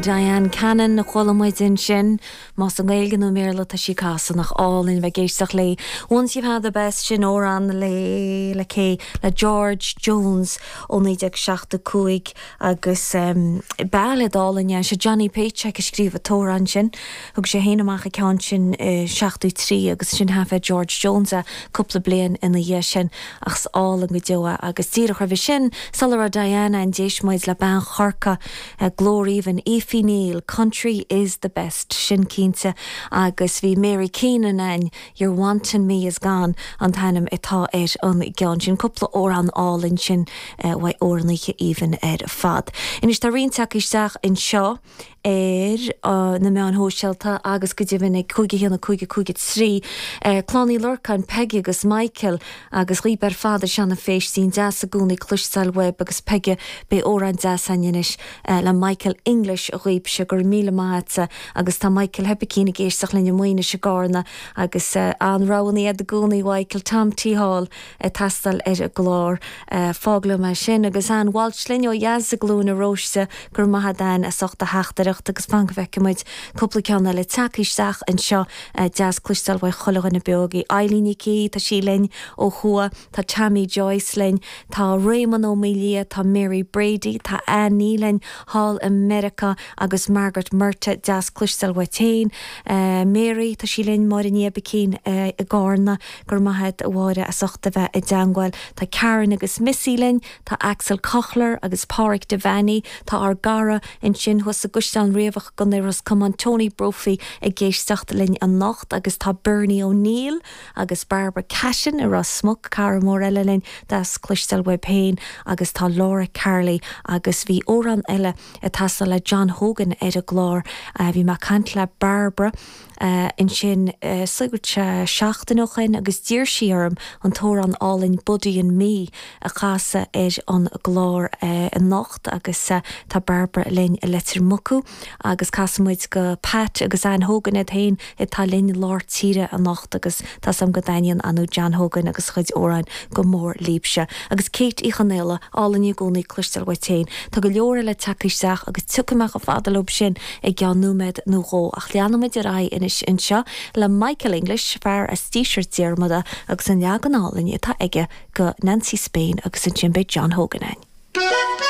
Diane Cannon a chuala muid ansin, más i nGaeilge nó i mBéarla atá sí ag casadh. Nach álainn a bheith ag éisteacht léi. Once you've had the best, sin amhrán le, le cé? le George Jones ó 1975 agus bailéad álainn é. Sé Johnny Paycheck a scríobh an t-amhrán sin. Thug sé féin amach an ceann sin i seachtó trí agus ansin thaifead George Jones é cúpla bliain ina dhiaidh sin ach is álainn go deo é agus díreach roimhe sin, sula raibh Diane ann, d'éist muid le bean Chorca A glór aoibhinn Effie Neill, country is the best, sin cinnte, agus bhí Mary Keenan ann Your wanting me is gone an t-ainm atá ar an gceann sin. Cúpla amhrán álainn ansin uaidh amhránaithe aoibhinn ar fad. Anois tá roinnt ag teacht isteach anseo ar na meáin shóisialta agus go deimhin ag 51553 Clann Uí Lorcáin, Peigí agus Michael. Agus dhaoib ar fad ar Seanadh Phéistín deas i gcónaí cloisteáil uaib agus Peigí beidh amhrán deas ann anois le Michael English dhaoibse go raibh míle maith a'tsa agus tá Michael Hoibicín ag éisteach linn i Maínis i gCárna agus an-roghanna a'd i gcónaí a Mhaidhcil Tom T Hall ag teastáil ar an gclár fág liom é sin agus Anne Walsh linn ó dheas i gCluain an Róistigh go raibh maith a'd Anne as ucht do theachtaireacht agus fan go bhfeicfimid cúpla ceann eile ag teacht isteach anseo Deas cloisteáil uaidh chuile dhuine beo agaibh, Eileen Nic Aoidh, tá sí linn ó thuaidh, tá Tammy Joyce linn, tá Réamonn Ó Maoilia, tá Mary Brady, tá Annie linn thall i Meiriceá agus Margaret Murtagh, deas cloisteáil uait féin Mary, tá sí linn, Máire Ní Oibicín i gCárna, go raibh maith agat a Mháire as ucht a bheith i dteangmháil, tá Karen agus Missy linn, Tá Axel Kochlar agus Páraic Devanney, tá ár gcara ansin thuas i gCaisleán Riabhach i gContae Ros Comáin, Tony Brophy, ag éisteacht linn anocht agus tá Bernie O'Neill agus Barbara Cashin i Ros Muc, cara mór eile linn, deas cloisteáil uaib féin agus tá Laura Carley agus bhí amhrán eile ag teastáil le John Hogan ar an gclár. Bhí mé ag caint le Barbara. Ansin sa gcathair tá seachtain ó shin agus d'iarr sí orm an t-amhrán álainn 'Buddy and Me' a chasadh ar an gclár anocht agus tá Barbara linn i Leitir Mucú agus casfaidh muid go Pat agus Anne Hogan iad féin atá linn lár tíre anocht agus tá a fhios agam go dtaitníonn John Hogan agus a chuid amhráin go mór libse. Agus Kate Uí Chonaola. Álainn i gcónaí cloisteáil uait féin. Tá go leor eile ag teacht isteach agus tiocfaidh mé chomh fada leo sin i gceann nóiméad nó dhó, ach leanfaidh muid ar aghaidh anois anseo le Michael English, fear as Díseart Diarmada, agus an leagan álainn atá aige go Nancy Spain agus ansin beidh John Hogan ann.